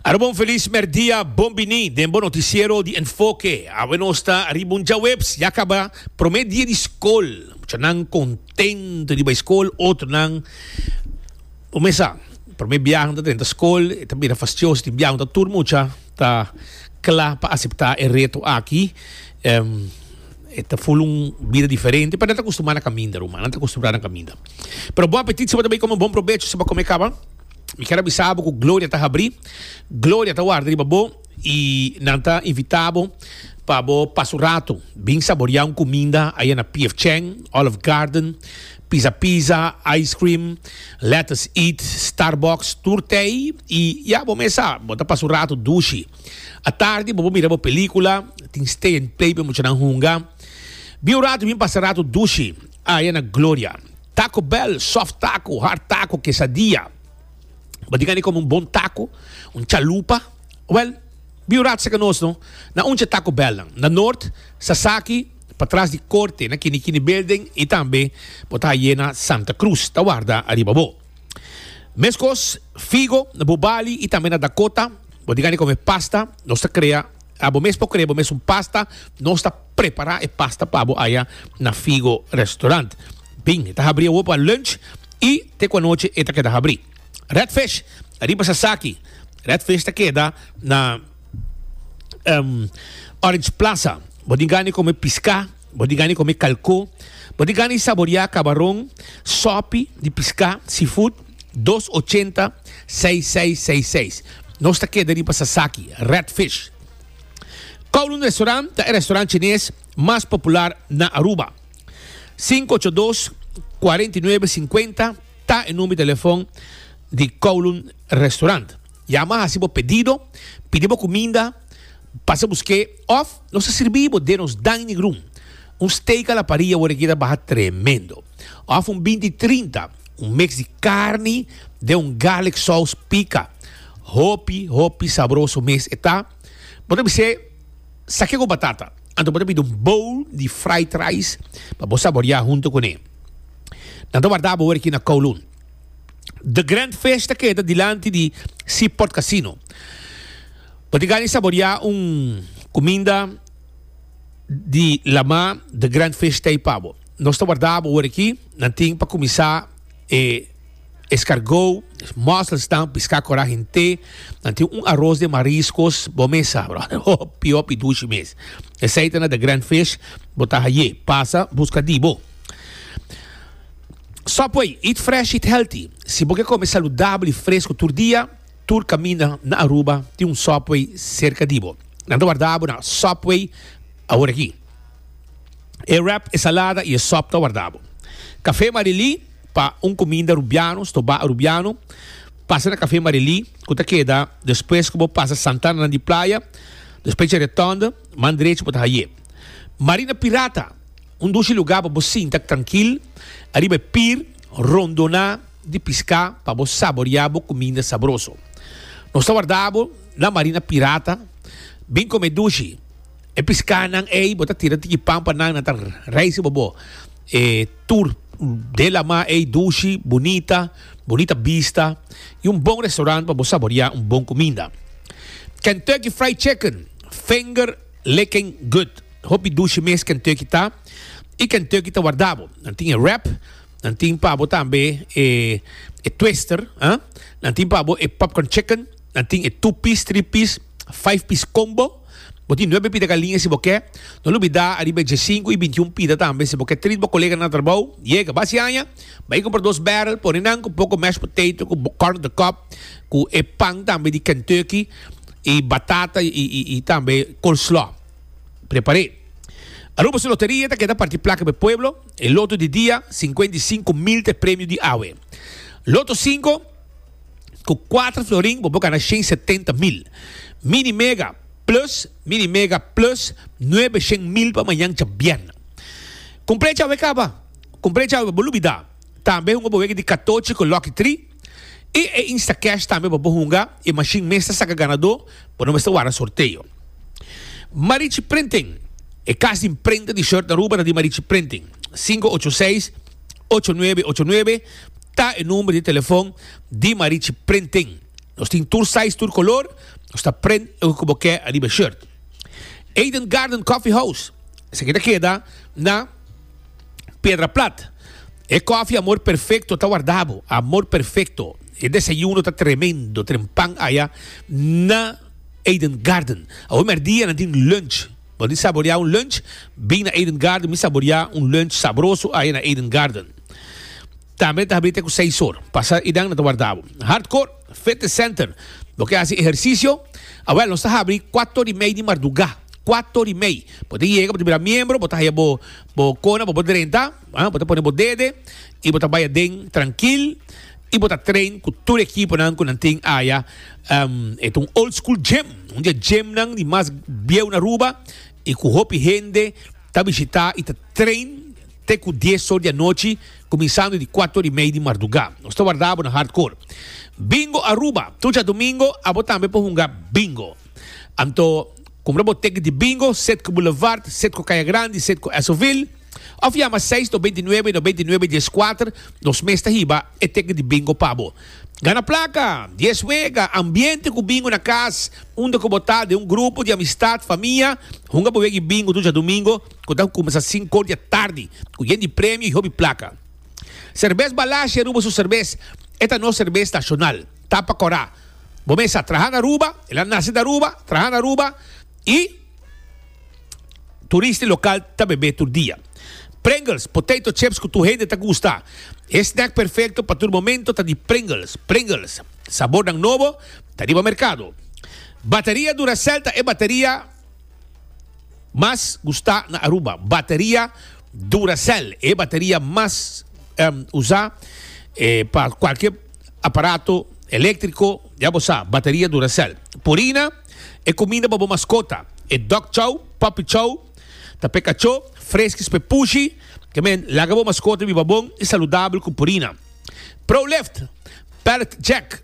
Arobon feliz merdia, bon bini den bo noticiero di Enfoke. Awe nos ta riba un djaweps, ya caba prome dia di scol. Muchanan contento di bay scol, otronan bo mesa prome biaha nan ta drenta scol, e ta bira fastioso, tin biaha unda tur mucha ta cla pa acepta e reto aki. E ta ful un bida diferente, pa nan ta custumá na caminda, ruma. Nan ta custumbrá na caminda. Pero bon apetit si bo ta bay come, bon probecho si bo a come caba. Mi kier a bisa bo cu Gloria ta habrí, Gloria ta warda riba bo i nan ta invitá bo pa bo pasa un rato bin saboriá un cuminda aya na P.F. Chang, Olive Garden, Pizza Pizza, Ice Cream, Let Us Eat, Starbucks, tur tei i ya bo mes sa, bo ta pasa un rato dushi. Atardi bo por mira bo pelicula, tin stay and play pa muchanan hunga. Bin un rato bin pasa rato dushi aya na Gloria. Taco Bell, soft taco, hard taco, quesadilla. Bo tin a come un bon taco, un chalupa? Well, bin un rato seca nos no, na uncha Taco Bell nan, na Noord, Sasaki, patras di Corte, na Kini Kini Building y tambe bo ta haye na Santa Cruz ta warda ariba bo. Meskos figo na bo bali y tambe na Dakota, bo di gana di come pasta, nos ta crea, a bo mes por crea bo mes un pasta, nos ta prepara e pasta pa bo aya na Figo Restaurant. Bin, e ta habri awo pa lunch y te cu anochi e ta keda habri. Red Fish, ariba Sasaki, Red Fish ta keda na Orange Plaza, bo di gana di come pisca, Bo di gani come calcó. Bo di gani saboria cabaron, sopi di pisca, seafood, dos ochenta, seis seis seis seis. Nos ta keda riba Sasaki, Red Fish. Kowloon Restaurant ta e restaurant Chinés mas popular na Aruba. Sinku ocho dos, kuarenta i nuebe, singkuenta ta e number di telefon di Kowloon Restaurant. Yama hasi bo pedido, pidi bo cuminda, pasa busqué of nos ta sirbi bo den nos dining room. Un steak a la parrilla word aki ta baha tremendo. Of un binti trinta, un mix di carni den un garlic saus pica. Hopi, hopi sabroso mes e ta. Bo ta bis'é, sa ke ku batata? Anto bo ta pidi un bowl di fried rice pa bo saboreá hunto kuné. Nan ta warda bo word aki na Kowloon. The Grand Fish ta keda dilanti di Seaport Casino. Bo tin gana saboreá un kuminda di lamá The Grand Fish ta ei pa bo. Nos ta warda bo ora aki. Nan tin pa kuminsá e eskargou, mòselsnan, piská kòrá hint'é. Nan tin un aros den mariskos, bo mes sa, bròder, hopi, hopi dushi mes. Esei ta na The Grand Fish, bo ta ha'ye. Pasa buska di bo. Subway, Eat fresh, eat healthy. Si bo ke kome saludabel i fresku tur dia, tur kaminda na Aruba tin un Subway serka di bo. Nan ta warda bo na Subway awor aki. E wrap, e salada i e sop ta warda bo. Kafé Marelí, Pa un kuminda Arubiano, stobá Arubiano, pasa na Kafé Marelí ku ta keda despues ku bo pasa Santa Ana di Playa, despues dje Retònde, man drechi bo ta haye. Marina Pirata. Un dushi lugá pa bo sinta trankil ariba e pir rondoná di piská pa bo saboriá bo kuminda sabroso. Nos ta warda bo na Marina Pirata. Bin kome dushi e piskánan ei, bo ta tira tiki pan pa nan, nan ta reise pa bo e tur dela mar ei dushi, bunita, bunita bista i un bon restaurant pa bo saboriá un bon kuminda. Kentucky Fried Chicken, Finger. Liking good. Hopi dushi mes Kentucky ta y Kentucky ta warda bo. Nan tin e wrap, nan tin pa bo tambe e e twister, ah. Nan tin pa bo e popcorn chicken, nan tin e two piece, three piece, five piece combo. Bo tin nuebe pita galiña si bo ke. No lubida ariba e diesinco y bintiun pita tambe. Si bo ke treat bo colega nan atrabou, yega, bas yaña, bay compra dos barrel, pone nan cu poco mashed potato, cu corn on the cob, cu e pan tambe di Kentucky. y batata y tambe coleslaw prepare. Aruba su loteria ta keda parti placa pa e pueblo, e loto di dia cincuenta y cinco mil ta e premio di awe. Loto cinco cu cuatro florin bo por gana shen setenta mil. Mini mega plus mini mega plus nuebe shen mil pa mañan djabièrnè. Cumpleaños awe caba, cumpleaños awe bo lubida tambe hunga bo wega di catochi cu lucky tri. E e Instacash tambe pa bo hunga e mashin mes ta saca ganador bo no mester wara sorteo. Marichi Printing E cas di prenta di shirt na Aruba ta di Marichi Printing. Sinku ocho seis ocho nuebe ocho nuebe ta e number di telefon di Marichi Printing. Nos tin tur size tur color, nos ta print loke cu bo ke ariba e shirt. Eden Garden Coffee House Esaki ta keda na. Piedra plat. E coffee amor perfecto ta warda bo. Amor perfecto. E desayuno ta tremendo. Tren pan aya na Eden Garden. Awe merdia nan tin lunch. Bo tin saboria un lunch? Bin na Eden Garden. Mi saboria un lunch sabroso aya na Eden Garden. Tambe ta habri te cu seis or. Pasa idan nan ta warda bo. Hardcore Fitness Center. Bo ke haci ehercicio? Awel nos ta habri cuato ori mei di marduga. Kuator i mei bo ta yega bo ta bira miembro bo ta haya bo bo kona bo bo drenta ah bo ta pone bo dede i bo ta bai aden trankil i bo ta train ku tur e ekiponan ku nan tin aya um e ta un old school gym un di e gymnan di mas bieu na Aruba i ku hopi hende ta bishita i ta train te ku dies or di anochi kuminsando di kuator i mei di marduga nos ta warda bo na hardcore Bingo Aruba tur dia domingo abo tambe por hunga bingo. Anto, kumbra bo teken di Bingo, Setco Boulevard, Setco Kaya Grandi, Setco Esoville, òf yama seis no beintinuebe no beintinuebe dies kuater, nos mes ta hiba e teken di Bingo pa bo. Gana plaka, dies wega, ambiente ku Bingo na kas, unda ku bo ta, den un grupo di amistat, famia, hunga bo wegi Bingo duchi a Domingo, ku ta kuminsá sinkor di atardi, ku yen di premio i hopi plaka. Serbes Balasje Aruba su serbes, e ta nos serbes nashonal. Ta pa cora. Bo mes a traha na Aruba, el a nace na Aruba, traha na Aruba y turista y local ta bebe tur dia. Pringles, potato chips cu tur hende ta gusta. E snack perfecto pa tur momento ta di Pringles. Pringles, sabornan nobo ta riba mercado. Bateria Duracell ta e bateria mas gusta na Aruba. Bateria Duracell, e bateria mas usa pa cualkier. Aparato eléktriko, ya bo sa, bateria Duracell. Purina, e kuminda pa bo maskota, e dog chow, puppy chow, ta p'e kachó, freskis p'e pushi, ke men, laga bo maskota biba bon i saludabel ku purina. Prolift, pallet jack,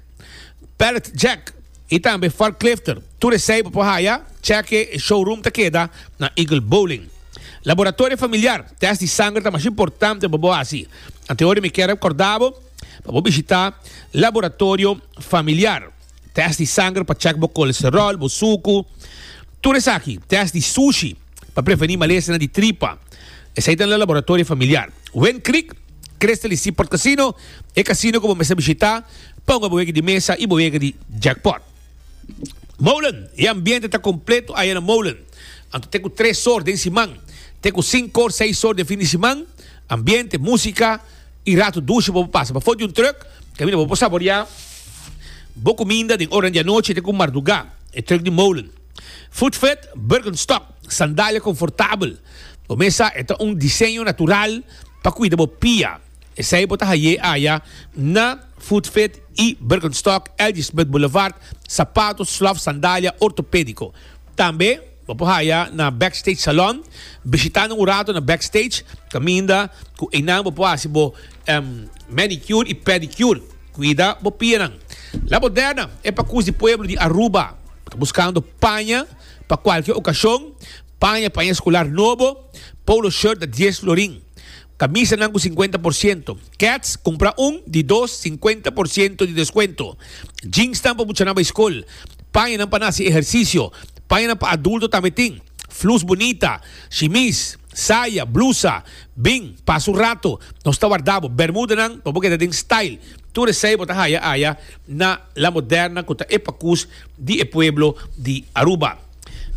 pallet jack, i tambe forklifter, tur esei bo por haya, chèke e showroom ta keda na Eagle Bowling. Laboratorio familiar, tèst di sanger ta mas importante pa bo hasi, antehoria mi kier rekòrda bo, Pa bo bishitá laboratorio familiar, tèst di sanger pa chèk bo kolesteròl, bo suku, tur esaki, tèst di sushi pa prevení malesnan di tripa, esei ta na laboratorio familiar. Win Creek Crystal i Seaport Casino, e kasino ku bo mester bishitá pa hunga bo wega di mesa i bo wega di jackpot. Molen, E ambiente ta kompleto aya na Molen, anto t'e ku tres sor den siman t'e ku sinku or seis sor den fin di siman, ambiente, músika, y rato dushi bo por pasa pafo di un truck, caminda bo por saborea bo cuminda den oranan di anochi te cu marduga. E truck di Molen, Food Fit, Birkenstock, sandalia confortabel, bo mesa e ta un diseño natural pa cuida bo pia. Esey bo ta haye aya na Food Fit y Birkenstock, L.G. Smith Boulevard, sapato, slof, sandalia ortopedico. Tambe. Bo por haya na Backstage Salon. Bishitanan un rato na Backstage, caminda cu eynan bo por haci bo manicure y pedicure. Cuida bo pianan. La Moderna e pa cus di pueblo di Aruba ta buscando paña pa cualkier ocasion, paña, paña escolar nobo, polo shirt ta dies florin. Kamisanan ku sinkuenta por siento, Keds kumpra un di dos sinkuenta por siento di deskuento, Jeansnan pa buchanan bai skol, Pañanan pa na hasi ehersisio, Pañanan pa adulto tambe tin, Flus bunita, Shimis, Saya, Blusa, Bin, Pasa un rato, Nos ta warda bo, Bermudanan pa bo keda den style, tur esei bo ta haya aya na La Moderna ku ta e pakus di e pueblo di Aruba.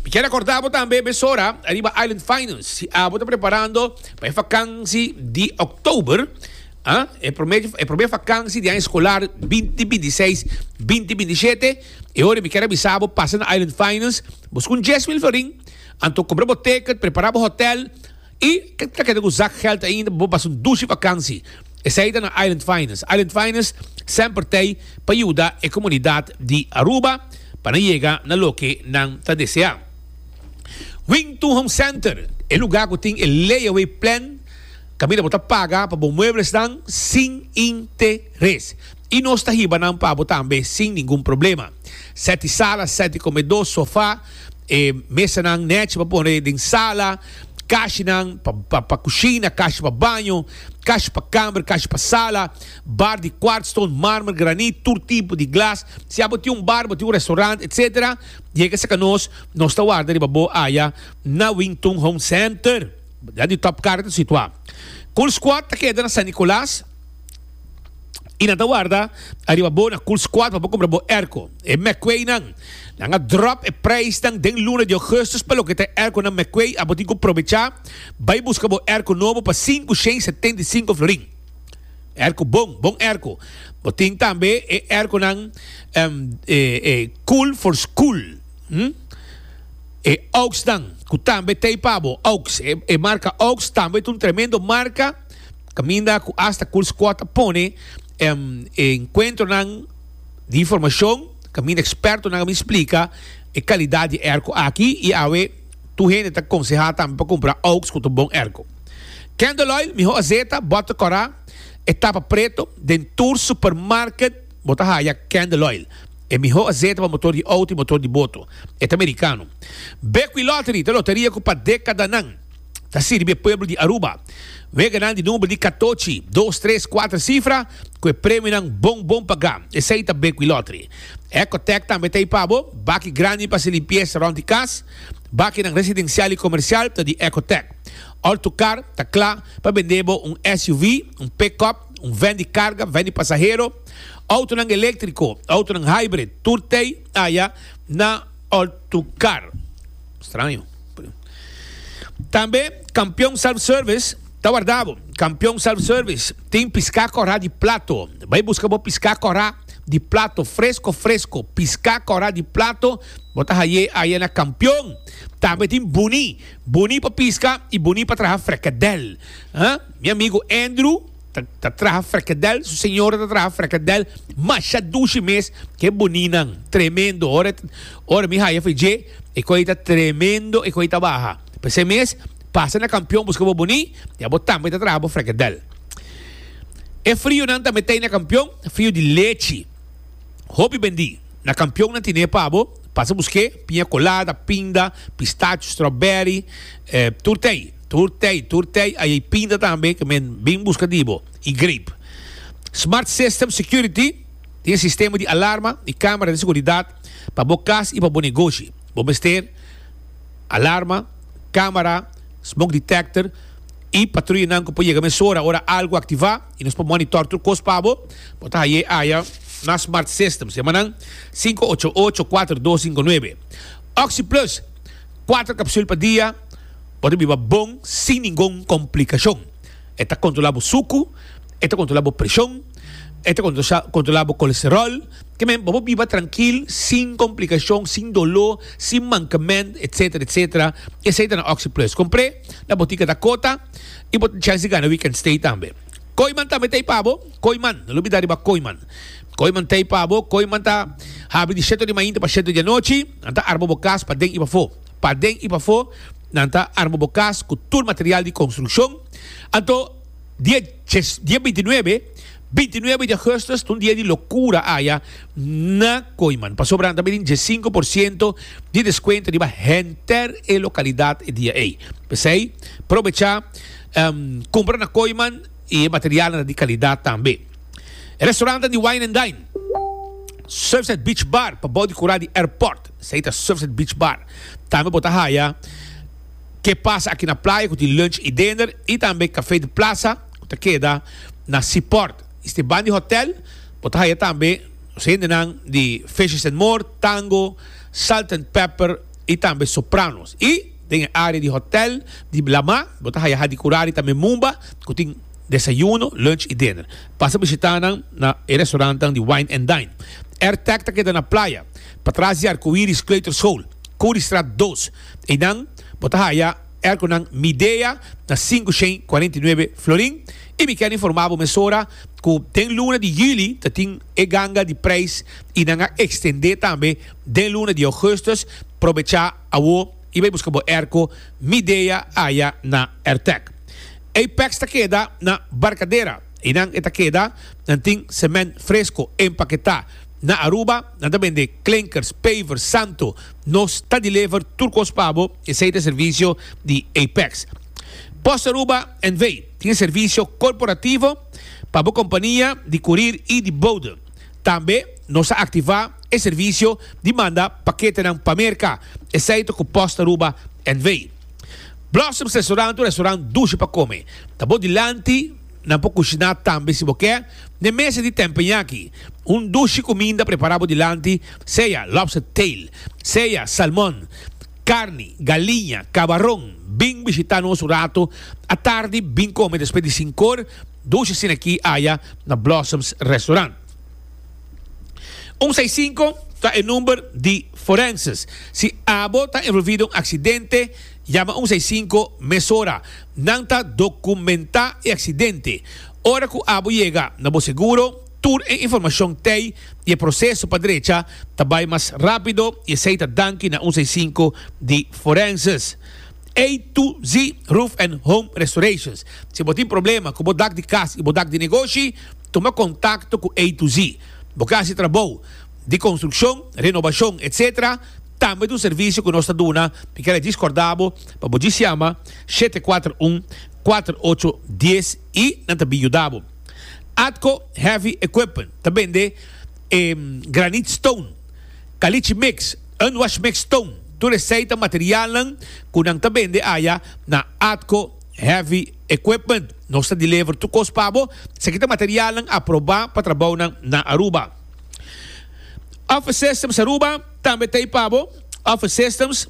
Mi kier acorda bo tambe mesora ariba Island Finance. Si abo ta preparando pa e vakansi di October, ah, e prome, e prome vakansi di aña escolar 2026, 2027, e ora mi kier a bisa bo pasa na Island Finance, bo scun Jeswil Florin, anto compra bo ticket, prepara bo hotel, I ta keda ku zakgeld ainda pa bo pasa un dushi vakansi. Esei ta na Island Finance. Island Finance semper tei pa yuda e komunidat di Aruba pa nan yega na loke nan ta deseá. Wington Home Center, e lugá ku tin e layaway plan kaminda bo ta paga pa bo mueblenan sin interes. I nos ta hiba nan pa bo tambe sin ningun problema. Set di sala, set di komedó, sofá, e mesanan nèchi pa pone den sala, kashinan pa pa kushina, kashi pa baño, kashi pa kamer, kashi pa sala, bar di kwartstone, marmer, granit, tur tipo di glas. Si abo tin un bar, bo tin un restaurant, etc. Yega seka nos, nos ta warda riba bo aya na Wington Home Center. Dandi Top Car ta situá. Cool Squad ta keda na San Nicolas. y nan ta warda ariba bo na Cool's Quad pa bo cumpra bo airco. E McQuaynan, nan a drop e prijsnan den luna di augustus pa loke ta e airconan McQuay, abo tin cu probecha bay busca bo airco nobo pa sinku shen setenta i sinku florin. Airco bon, bon airco. Bo tin tambe e airconan Cool for School, e Auxnan, cu tambe ta ey pa bo, Aux. E marca Aux tambe ta un tremendo marca. Caminda cu hasta Cool Squad a pone e encuentronan di informacion, caminda expertonan a bin splica e calidad di e airco aki y awe tur hende ta conseha tambe pa cumpra Oaks cu ta bon airco. Candle Oil, miho azeta, butter cora e tapa preto, den tur supermarket bo ta haya Candle Oil, e miho azeta pa motor di auto y motor di boto. E ta Mericano. Bekwilottery ta loteria cu pa decadanan. ta sirbi e pueblo di Aruba. Wega nan di number di katochi, dos, tres, kuater sifra ku e premionan bon bon pagá. Esei ta Bequi Lottery. Ecotec tambe ta ei pa bo. Baki grandi pa hasi limpiesa rònt di kas. Bakinan residensial i komersial ta di Ecotec. Ortucar ta kla pa bend'é bo un SUV, un pick-up, un vèn di karga, vèn di pasahero, outonan eléktriko, outonan hybrid, tur t'ei aya na Ortucar. Straño. Tambe Campeon Self Service ta warda bo. Campeon Self Service tin piscá corá di plato. Bai busca bo piscá corá di plato fresco fresco. Piscá corá di plato bo ta hay'é aya na Campeon. Tambe tin buní, buní pa pisca y buní pa traha frekadel. Mi amigo Andrew. Ta, ta traha frekedel, su señora ta traha frekedel, masha dushi mes, ke boninan, tremendo, ora, ora mi haya fe dje, e koi ta tremendo, e koi ta baha, p'esei mes, pasa na kampion buska bo boni, ya bo tambe ta traha bo frekedel. E frionan ta metei na kampion, frio di lechi, hopi bendi, na kampion nan tine pa bo, pasa busk'é, piña kolada, pinda, pistachio, strawberry, eh, tur t'ei. Tur tei, tur tei a yei pinta tambe ke men bin buska di bo i greep. Smart System Security tin e sistema di alarma i kamera di seguridat pa bo kas i pa bo negoshi. Bo mester alarma, kamera, smoke detector i patruyanan ku por yega mesora ora algu aktivá i nos por monitor tur kos pa bo. Bo ta hañ'é aya na Smart Systems. Yama nan sinku ocho ocho, kuater dos, sinku nuebe. Oxi Plus. Kuater kapsul pa dia por ta biba bon sin ningun komplikashon. E ta kontrolá bo suku, e ta kontrolá bo preshon, e ta kontrolá bo kolesteròl. Ke men bo por biba trankil sin komplikashon, sin doló, sin mankament, etsetera, etsetera. Esei ta na Oxi Plus. Kompr'é na botika Dakota i bo tin chèns di gana Weekend Stay tambe. Koiman tambe ta ei pabo, koiman, no lo bida riba koiman. Koiman ta ei pabo, koiman ta habi di sheto di mainta pa sheto di anochi, nan ta arma bo kas pa den i pafo. Pa den i pafo nan ta arma bo kas ku tur material di konstrukshon. Anto, dia jes, dia bintinuebe, bintinuebe di Augustus ta un dia di lokura aya na koiman, pasobra nan ta bini jes sinku por siento di deskuento riba henter e lokalidat e dia ei. P'esei, probecha. Kumpra na Kooiman i e materialnan ta di kalidat tambe. E restaurannan di Wine and Dine, Surfside Beach Bar pa bou di kura di airport, esei ta Surfside Beach Bar. Tambe bo ta haya Ke Pasa Aki na Playa ku tin lunch i dinner i tambe Café de Plaza ku ta keda na Seaport. I steban di hotel bo ta haya tambe nos hendenan di Fishes and More, Tango, Salt and Pepper i tambe Sopranos. I. Den e área di hotèl di Blamá bo ta haya Hadi Kurari tambe Mumba ku tin desayuno, lunch i dinner. Pasa bishitá nan na e restaurantnan di Wine and Dine. Airtech ta keda na playa, patras di Arcoiris Kleuterschool, Curriestraat dos. Einan bo ta haya airconan Midea na sinku shen cuarenta y nueve florin. I mi ker informá bo mesora ku den luna di juli ta tin e ganga di preis i nan a ekstendé tambe den luna di ougustus. Probechá! Awor i bai buska bo erko mi dea aya na Ertec. Ey packs ta keda na Barcadera. Eynan e ta keda, nan tin cement fresco empaketá. Na Aruba nan ta bende klinkers, pavers, santo. Nos ta deliver tur kos pa bo, esey ta e servicio di ey packs. Post Aruba NV. tin e servicio corporativo pa bo kompania di kurir i di bode. Tambe nos a activa e servicio di manda paketenan pa Merca, esey to cu post Aruba NV. Blossoms Restaurant un restaurant dushi pa come. Ta bo dilanti, nan por cushina tambe si bo ke, n'e mesa di tempenyaki. Un dushi cuminda prepara bo dilanti, sea lobster tail, sea salmon, carni, galiña, cabaron. Bin bishita nos un rato atardi, bin come despues di sinkor. Dos asina aki aya na Blossoms Restaurant. Un sai sinku ta e number di Forenses. Si abo ta envolvi den un aksidente, yama un sai sinku mesora. Nan ta dokumentá e aksidente. Ora ku abo yega na bo seguro, tur e informashon tei i e proseso pa drecha ta bai mas rápido i esei ta danki na un sai sinku di Forenses. A to Z Roof and Home Restorations. Si bo tin problema ku bo dak di kas i bo dak di negoshi, tuma kontakto ku A to Z. Bo ke hasi trabou di konstrukshon, renobashon, etc. Tambe ta un servisio ku nos ta duna. Mi kere djis kòrda bo pa bo djis yama shete kuater un, kuater ocho dies i nan ta bin yuda bo. Atco Heavy Equipment ta bende e granit stone, kalichi mix, Un washmix ton, tur esey ta materialnan cu nan ta bende aya na Atco Heavy Equipment. Nos ta delever tur cos pa bo. Esaki ta materialnan aproba pa trabounan na Aruba. Office Systems Aruba tambe ta ey pa bo. Office Systems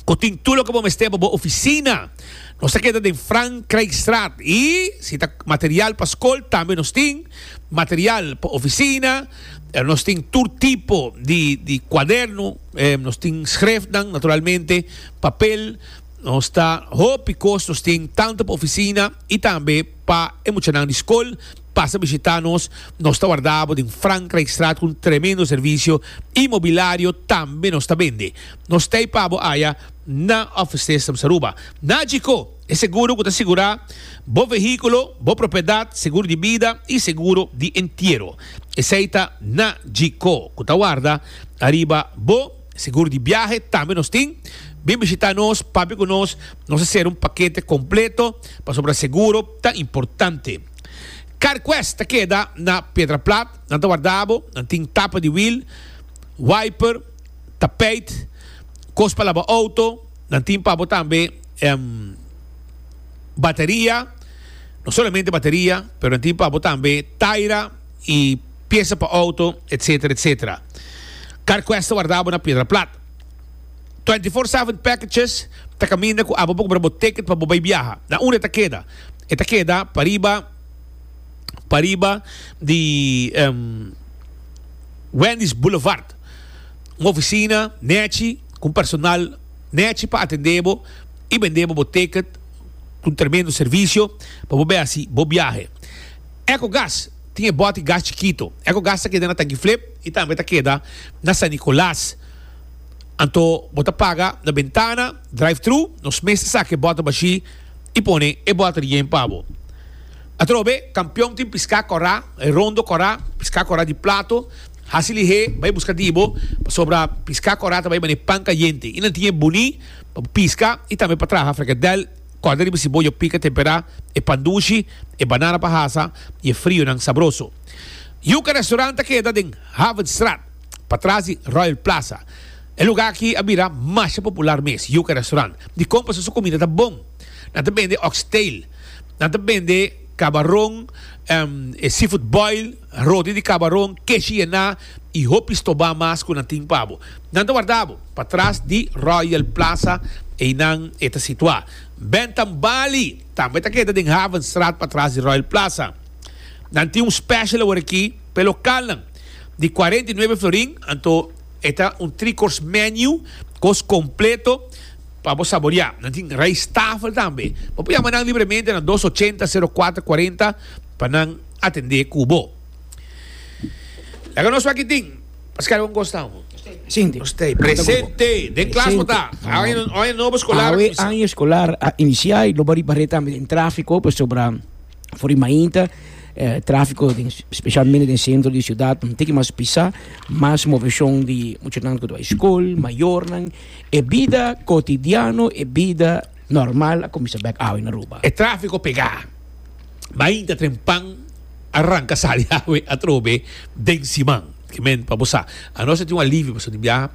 cu tin tur loke bo mester pa bo oficina. Nos ta keda den Frank Craigstraat y si ta material pa scol tambe nos tin material pa oficina. Eh, nos tin tur tipo di, di cuaderno, eh, nos tin schriftnan, naturalmente, papel, nos ta hopi cos nos tin tanto pa oficina y tambe pa e muchanan di school pasa bishita nos, nos ta wardabo den Frankrijkstraat cu un tremendo servicio y mobilario tambe nos ta bende. Nos tey pabo aya na Office Systems Aruba. Na Chico! E seguro ku ta sigurá bo vehíkulo, bo propiedat, seguro di bida i seguro di entiero. Esei ta na GCO ku ta warda ariba bo seguro di biahe tambe nos tin. Bin bishitá nos, papia ku nos, nos a ser un pakete kompleto pasobra seguro ta importante. CarQuest ta keda na Pedra Plat, nan ta warda bo, nan tin tapa di wiel, wiper, tapijt, kos pa laba outo, Nan tin pa bo tambe bateria, no solamente bateria, pero nan tin pa bo tambe taira y pieza pa auto, etcetera, etcetera. Carquest ta wardabo na Piedra Plat. Twenty four seven packages ta caminda cu abo bo compra bo ticket pa bo bay biaha. Na unda e ta keda? E ta keda pariba, pariba di Wendy's Boulevard. un ofisina nèchi ku un personal nèchi pa atendé bo i bendé bo bo teket ku un tremendo servisio pa bo bai hasi bo biahe. Ecogas tin e bòt di gas chikito. Ecogas ta keda na Tanki Flip i tambe ta keda na San Nicolas. Anto bo ta paga na bentana, drive-thru, nos mes ta saka e bòt bashí i pone e bòt rién pa bo. Atrobe, Kampion tin piská kòrá, e rondo kòrá, piská kòrá di plato. Hasi lihé, bai buska di bo, pasobra piská kòrá ta bai man'é pan kayente, i nan tin e buní pa bo piská i tambe pa traha freketdel. Kòrda riba si bo yo pika temperá e pan dushi, e banana pa hasa i e frionan sabroso. Yuka Restaurant ta keda den Havenstraat, pa tras di Royal Plaza. E lugá aki a bira masha popular mes, Yuka Restaurant. Dikon pasobra su kumida ta bon. Nan ta bende oxtail, nan ta bende kabaron, e seafood boil. Rodi di kabaron keshi yená i hopi stobá mas ku nan tin pa bo. Nan ta warda bo patras di Royal Plaza, einan e ta situá. Bentham Bali tambe ta keda den Havenstraat patras di Royal Plaza. Nan tin un special awor aki pa e lokalnan. Di cuarenta y nueve florin, anto e ta un three course menu, kos kompleto pa bo saboriá. Nan tin rijsttafel tambe. Bo por yama nan libremente na dos ochenta sero kuater kuarenta. Pa nan atendé ku bo. Laga nos wak e tin. Pa skada bon kos tau. Sinti. Nos ta e presente. Den klas bo ta. Awe nobo skolar a kuminsá. Awe año eskolar a inisiá i lo bo riba reta tambe den tráfiko pasobra for di mainta tráfiko den spesialmente den sentro di siudat un tiki mas pisá, mas moveshon di muchanan ku ta bai skol, mayornan, e bida kotidiano, e bida normal a kuminsá bèk awe na Aruba. E tráfiko pegá. Bai hinta tren pan a ranca sa di awe atrobe den siman. Ki men pa bo sa. Anos ta tin un alivio pasobra di biaha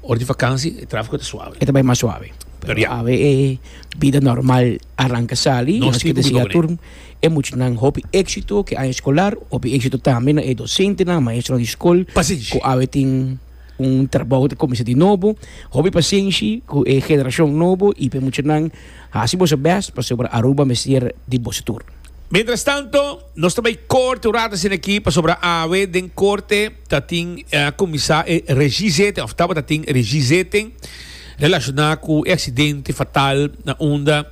ora di vakansi e trafico ta suave. E ta bai mas suave. Pero ya. Pero awe e bida normal a ranca sali. Nos tin cuminda cu ne. E muchanan hopi exito ki aña escolar. Hopi exito tambe na e docentenan, maestronan di scol. Pasenshi. Cu awe tin un trabao ta cuminsa di nobo. Hopi pasenshi cu e generacion nobo y p'e muchanan. Hasi boso best pasobra Aruba mester di boso tur. Mientras tanto nos ta bay corte un rato asina aki pasobra awe den corte ta tin cuminsa e regizetting of tabata tin regizetting relaciona cu e accidente fatal na unda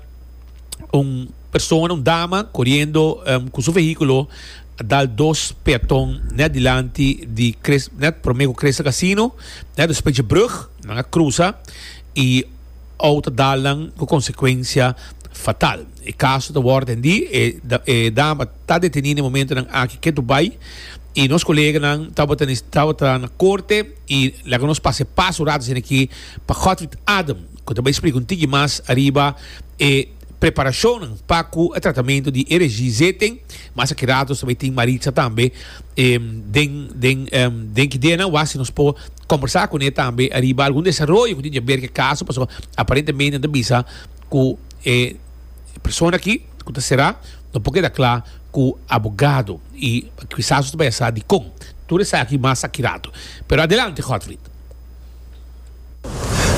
un persona un dama coriendo cu su vehiculo a dal dos peaton net dilanti di net prome cu Crystal Casino net despues dje brug nan a crusa y ou ta dal nan ku konsekuensia fatal. E kaso ta wòrdu atendí. E e dama ta detení na e momentunan aki ke Dubai i nos koleganan tabata tabata na korte i laga nos pasa e pas un rato esaki pa Godfried Adem ku ta bai splika un tiki mas ariba e Preparashonnan pa ku e tratamentu di RGZ e mas akerato so bai tin Maritza tambe den den den ki dianan wak si nos por kombersá kuné tambe ariba algun desaroyo ku tin dja ber ku e kaso paso aparentemente nan ta bisa ku e persona aki ku ta será no por keda kla ku abogado i kisas nos ta bai a sa dikon tur esaki mas akerato pero adelante Godfrid.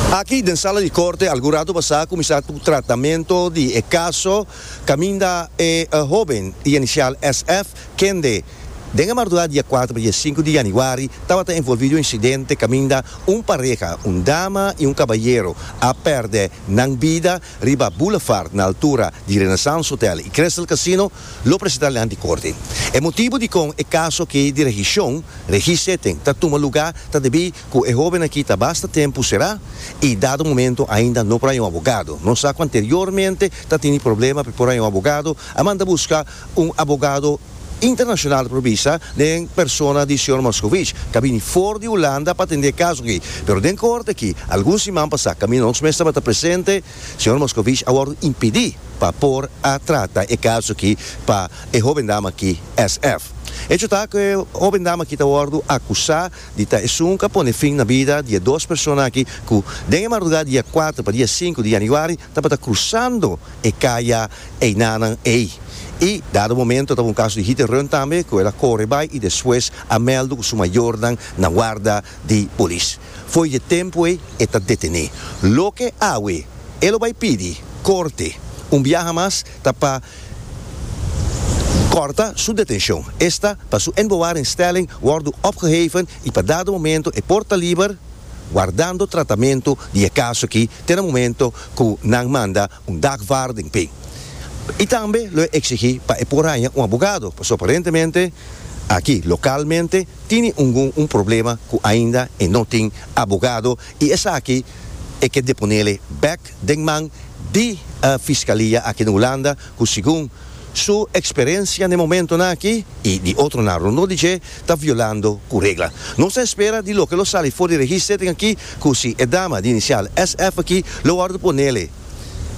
Aki den sala di korte algun ratu pasá kuminsá ku tratamentu di e kaso kaminda e hóben di inisial SF. kende den e marduá dia kuater pa dia sinku di yanüari tabata envolví di un insidente kaminda un pareha, un dama i un kabayero, a pèrdè nan bida riba Boulevard na altura di Renaissance Hotel i Crystal Casino, lo presentá nan di korte. E motibu dikon e kaso aki di rehishon, rehissetting, ta tuma lugá ta debí Ku e hoben aki ta basta tempu será i dado momento ainda no por haña un abogado. Nos sa ku anteriormente ta tini problema p'e por haña un abogado, a manda buska un abogado internashonal por bisa den persona di señor Moscovici k'a bini for di Hulanda pa atendé e kaso aki. Pero den korte aki, algun siman pasá kaminda nos mes tabata presente, señor Moscovici a wòrdu impidí pa por a trata e kaso aki pa e hoben dama aki, SF. Hecho ta ku e hoben dama aki ta wòrdu akusá di ta esun ka pone fin na bida di e dos persona aki ku den e marduga dia kuater pa dia sinku di yanüari tabata krusando e kaya einanan ei. I dado momento taba un kaso di hit and run tambe ku el a kore bai i despues a mèldu ku su mayornan na warda di polis. Fo'i di e tempu ei e ta detené. Loke awe e lo bai pidi korte un biaha mas. ta pa kòrta su detenshon. Esta pa su inbewaringstelling wòrdu opgeheven i pa dado momento e por ta liber, wardando tratamentu di e kaso aki te na momento ku nan manda un dagvaarding p'e. I tambe lo e eksigí pa e por haña un abogado, pasobra aparentemente aki lokalmente tini ungun un problema ku ainda e no tin abogado i esaki e ke deponele bèk. den man di Fiscalia aki den Hulanda cu segun su experiencia n'e momentonan aki y di otronan rondó di dje ta violando cu regla. Nos ta espera di loke lo sali for di register den aki cu si e dama di inicial SF aki lo wordo ponele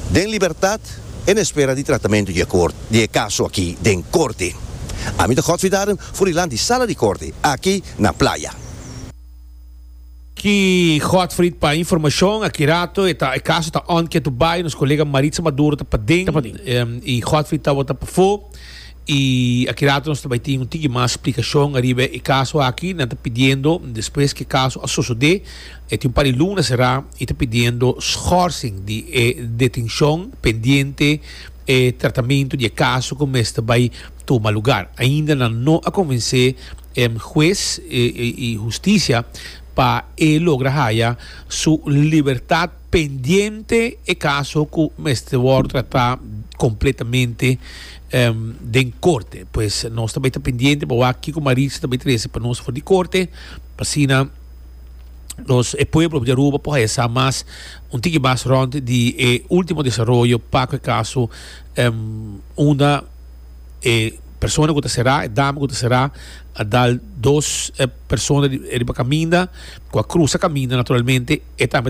den libertad e na espera di tratamento di e caso aki den corte. Ami ta Godfrey Darren, Furilan di Sala di Corte aki na Playa. Ki Godfried pa informacion aki rato e ta e caso ta on ketu bay nos colega Maritza Maduro ta paden y Godfried tabata pafo y aki rato nos ta bay tin un tiki mas splicacion ariba e caso aki nan ta pidiendo despues ke caso a sosode e tin un par di luna sera y ta pidiendo schorsing di e detencion pendiente e tratamento di e caso cu mester bay tuma lugar ainda nan no a convence Hues i Hustisia pa e logra haya su libertad pendiente e caso cu mester wor trata completamente den corte. Pues nos ta bay ta pendiente pa wak kico Maritza ta bay trece pa nos for di corte pa asina nos e pueblo di Aruba por haya sa mas un tiki mas rond di e ultimo desaroyo pa cu e caso unda. e persona ku ta será e dam ku ta será a dal dos persona riba kaminda ku a krusa kaminda naturalmente e tambe